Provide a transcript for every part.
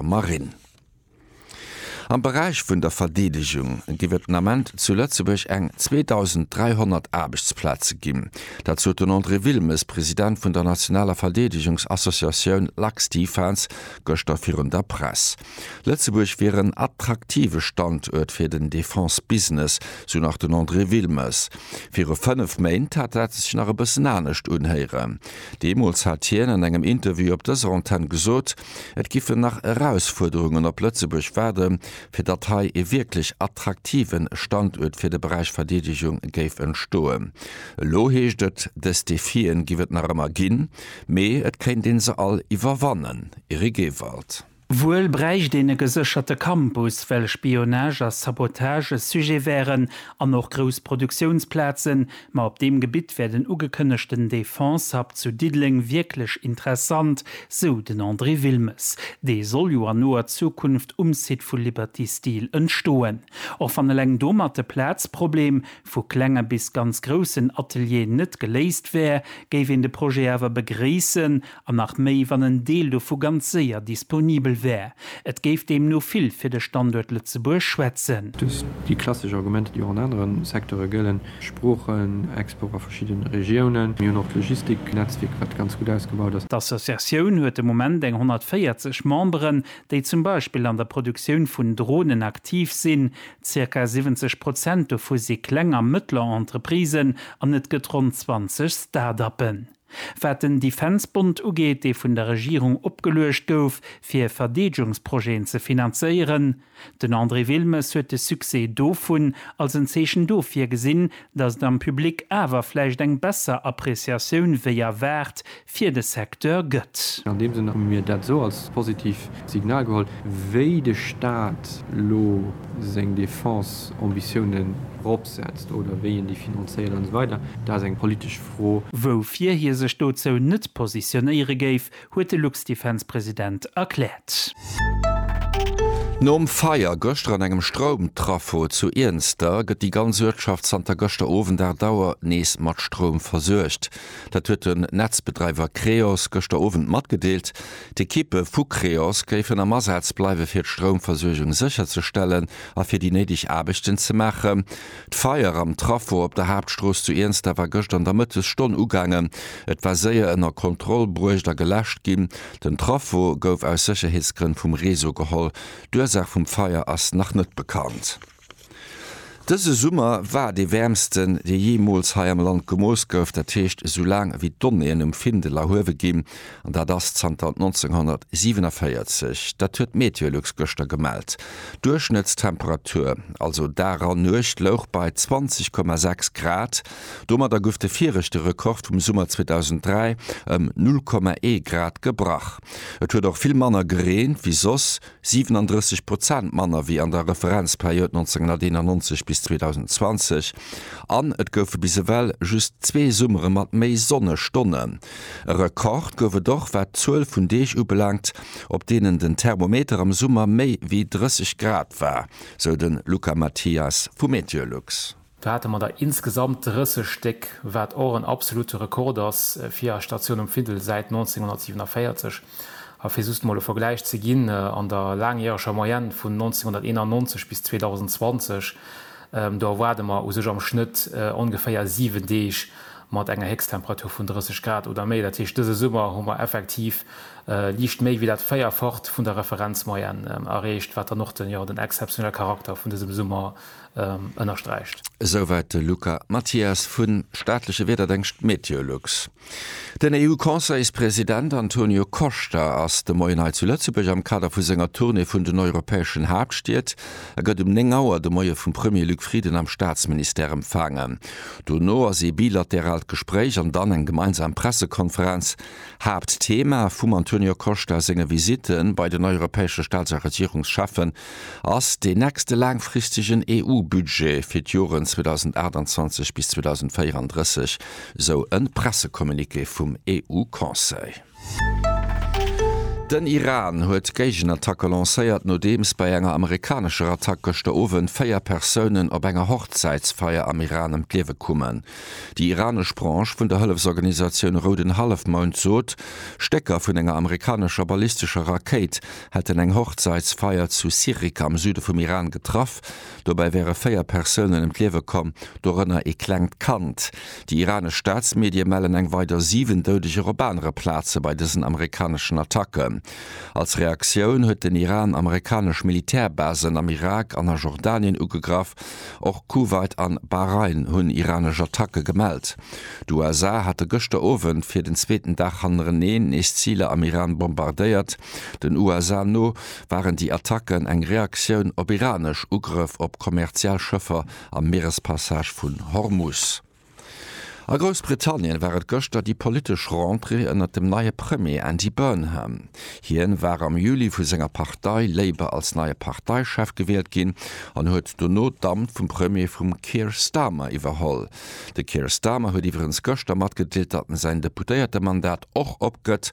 Marinn. Am Beräich vun der Verdeedegung géif et den Ament zu Lëtzebuerg eng 2.300 Aarbechtsplaze ginn. Dat sot den André Wilmes, President vun der nationaler Verdeedegungsassociatioun LuxDefence, gëschter virun der Press. Lëtzebuerg wier en attraktive Standuert fir den Defense-Business, sou nach den André Wilmes. Viru fënnef Méint hat dat sech nach e bëssen anescht unhéieren. Deemools hat hien an engem Interview op dëser Antenn gesot, Et giffen nach Erausfuerderungen op Lëtzebuerg waarde fir datt hei ee wierklech attraktive Standuert fir de Beräich Verdeedegung géif entstoen. Elo heescht et, dës Defie giff et nach ëmmer ginn, mee et kéint ee se all iwwerwannen. Eric Ewald. Wuel bräicht een e gesécherte Campus, well Spionage a Sabotage e Sujet wären an och grouss Produktiounsplazen, Ma op deem Gebitt wär den ugekënnegten Defense-Hub zu Diddeleng wierklech interessant, sou den André Wilmes. Dee soll jo an noer Zukunft um Site vu Liberty Steel entstoen. Och wann eleng domat de Plazproblem vu klenge bis ganz groussen Atelieren net geléist wär, géif een de Projet awer begréissen An nach méi, wann en Deel dovu ganz séier disponibel wär. Et géif deemno vill fir de Standuert Lëtzebuerg schwätzen. Dës, déi klassesch Argumenter, déi och an anere Secteure gëllen, Sproochen, Export a verschidde Regiounen. Mir hunn och d'Logistiknetzwierk, wat ganz gutt ausgebaut ass. D'Associatioun huet de Moment eng 140 Memberen, déi zum Beispill an der Produktioun vun Dronen aktiv sinn. Zirka 70 Prozent dovu si kleng a mëttler Entreprisen an et gëtt ronn 20 Start-uppen. Wat den Defense-Bond ugeet, dee vun der Regierung opgeluecht gouf, fir Verdeedgungsprojeten ze finanzéieren, den André Wilmes huet de Succès dovun als en Zeechen dofir gesinn, datt et am Public awer vläicht eng besser Appreciatioun wéi erwaart fir de Secteur gëtt. An deem Sënn hu mir dat esou als positiv Signal geholl, wéi de Staat elo seng Defense-Ambitiounen eropsetzt oder wéi en déi finanzéiert an esou weider. Dat ass eng politesch Fro, woufir hie sech dozou net positionéiere géif, huet de Luxdefense-President erkläert. Nom Feier gëschter an engem Stroumtraffo zu Iernster gëtt déi ganz Uertschaft zanter gëschter Owend 8 Auer nees mat Stroum versuergt. Dat huet den Netzbedreiwer Creos gëschter Owend matgedeelt. D'Ekippe vu Creos géifen am Asaz bleiwe fir d'Stroumversuergung sécherzestellen a fir déi néideg Aarbechten ze maachen. D'Feier am Trafo op der Haaptstrooss zu Iernster war gëscht an der Mëttesstonn ugaangen. Et war séier ënner Kontroll bruecht a geläscht ginn. Den Trafo gouf aus Sécherheetsgrënn vum Réseau geholl. D'Ursaach vum Feier ass nach net bekannt. Dëse Summer war dee wäermsten, dee jeemools hei am Land gemooss gouf. Dat heescht, esou laang wéi d'Donnéeën um Findel erhuewe ginn, An dat ass zanter 1947, dat huet d'Meteolux gëschter gemellt. D'Duerchschnëttstemperatur, also Dag an Nuecht, louch bei 20,6 Grad. Domadder gouf de viregte Rekord vum Summer 2003 ëm 0,1 Grad gebrach. Et huet och vill manner gereent wéi soss. 37 Prozent manner wéi an der Referenzperiod 1991 bis 2020, an et goufe bis ewell just zwee Summere mat méi Sonnestonnen. E Rekord gouf et och wat d'Zuel vun Deeg ubelaangt, op deenen den Thermometer am Summer méi wéi 30 Grad war, sou de Luca Mathias vu Meteolux. Do hate mer der insgesamt 30 Stéck, wat och en absolute Rekord ass fir a Statioun um Findel säit 1947. A fir just emol e Vergläich ze ginn, an der laangjäreger Moyenne vun 1991 bis 2020, do erwaarde mer u sech am Schnëtt ongeféier 7 Deeg mat enger Héchsttemperatur vun 30 Grad oder méi. Dat heescht, dëse Summer hu mer effektiv liicht méi wéi dat Véierfacht vun der Referenzmoyenne erreecht, wat dann och den exzeptionelle Charakter vun dësem Summer ënnersträicht. Esouwäit de Luca Mathias vu staatleche Wiederdéngscht Meteolux. Den EU-Conseilspresident Antonio Costa ass de Moien hei zu Lëtzebuerg am Kader vu senger Tournée vun den europäeschen Haaptstied. E gëtt um 9 Auer de Moie vum Premier Luc Frieden am Staatsministère empfaangen. Dono ass ee bilateraalt Gespréich an dann eng gemeinsam Pressekonferenz. Haaptthema vum Antonio Costa senge Visitte bei den europäesche Staats a Regierungscheffen ass deen nächste laangfristegen EU-Budget fir d'Joren 2028 bis 2034, esou e Pressecommuniqué vum EU-Conseil. Den Iran huet Géigenattacke lancéiert, nodeems bei enger amerikanescher Attack gëschter Owend véier Persounen op enger Hochzäitsfeier am Iran ëm d'Liewe kommen. Déi iranesch Branche vun der Hëllefsorganisatioun Rouden Hallefmound sot, Stécker vun enger amerikanescher ballistescher Rakéit hätten eng Hochzaitsfeier zu Sirik am Süde vum Iran getraff. Dobäi wäre véier Persounen ëm d'Liewe komm, dorënner ee klengt Kand. Déi iranesch Staatsmedie mellen eng weider siwen Doudeger op anere Plaze bei dësen amerikaneschen Attacken. Als Reaktioun huet den Iran amerikanesch Militärbasen am Irak an a Jordanien ugegraff. Och Kuwait an Bahrain hunn iranesch Attacke gemellt. D'USA hate gëschter Owend fir den zweeten Dag hannereneen nees Ziler am Iran bombardéiert. Den USA no waren déi Attacken eng Reaktioun op iranesch Ugrëff op kommerziell Schëffer am Mierespassage vun Hormus. A Groussbritannien war et gëschter déi politesch Rentrée ënnert dem neie Premier Andy Burnham. Hien war am Juli vu senger Partei Labour als neie Parteichef gewielt ginn an huet dono d'Amt vum Premier vum Keir Starmer iwwerholl. De Keir Starmer huet iwwregens gëschter matgedeelt, datt en säin Deputéiertemandat och opgëtt.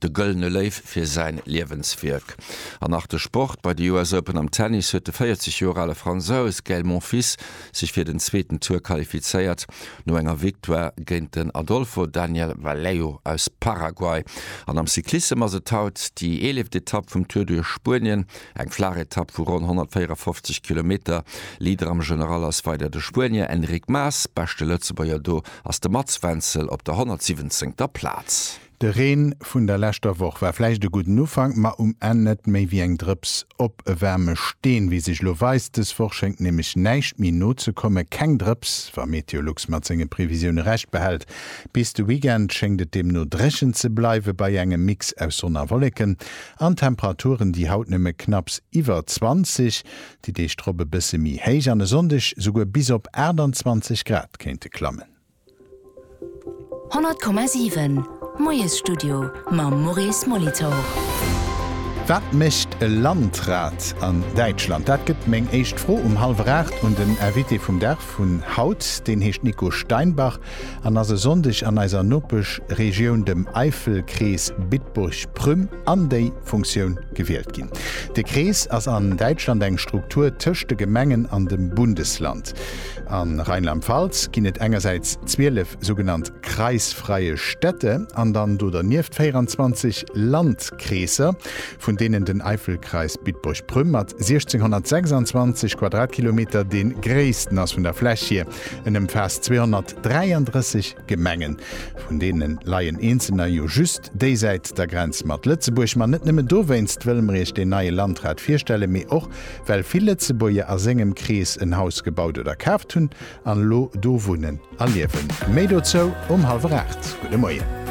de Gëllene Léiw fir säin Liewenswierk. An nach de Sport, Bei de US Open am Tennis huet de 40 Joer ale Fransous Gaël Monfils sech fir den zweeten Tour qualifizéiert, no enger Victoire géint den Adolfo Daniel Vallejo aus Paraguay. An am Cyclissem ass et haut déi eeleeft Etapp vum Tour duerch Spuenien, eng flaach Etapp vu ronn 154 Kilometer. Leader am General ass weider de Spuenier Enric Mas, beschte Lëtzebuerger do ass de Mats Wenzel op der 117. Plaz. De Reen vun der leschter Woch war vläicht e gudden Ufank, ma um Enn net méi wéi eng Drëps op e waarme Steen, wéi sech lo weist. Dës Woch schéngt nämlech näischt méi nozekomme, keng Drëps, wa Meteolux mat senge Previsioune Recht behält. Bis de Weekend schéngt et deemno dréchen ze bleiwe bei engem Mix aus Sonn a Wolleken an Temperaturen, déi haut nëmme knapps iwwer 20, déi Deeg drop e bësse méi héich an e Sonndeg souguer bis op 28 Grad kéinte klammen. 100,7 Moiesstudio mam Maurice Molitor. Wat mécht e Landrat an Däitschland? Dat gëtt meng éischt Fro um hallwer aacht un den Invité vum Dag vun haut. Deen heescht Nico Steinbach an ass e Sonndeg an eiser Nopeschregioun, dem Eifelkrees Bitburg-Prüm, an déi Funktioun gewielt ginn. De Krees ass an Däitschland eng Struktur tëscht de Gemengen an dem Bundesland. A Rheinland-Pfalz ginn et engersäits 12 sougenannt kreisfreie Städte an dann do dernieft 24 Landkreesser, vun deenen den Eifelkreis Bitburg-Prüm mat 1626 Quadratkilometer dee gréissten ass vun der Fläch hier. En ëmfaasst 233 Gemengen, vun deene leien eenzelner jo just déisäit der Grenz mat Lëtzebuerg. Ma net nëmme dowéinst wëlle mer Iech deen neie Landrat virstellen, mee och Well vill Lëtzebuerger a sengem Krees en Haus gebaut oder kaaft hunn an elo do wunnen a liewen. Méi dozou um hallwer 8. Gudde Moien.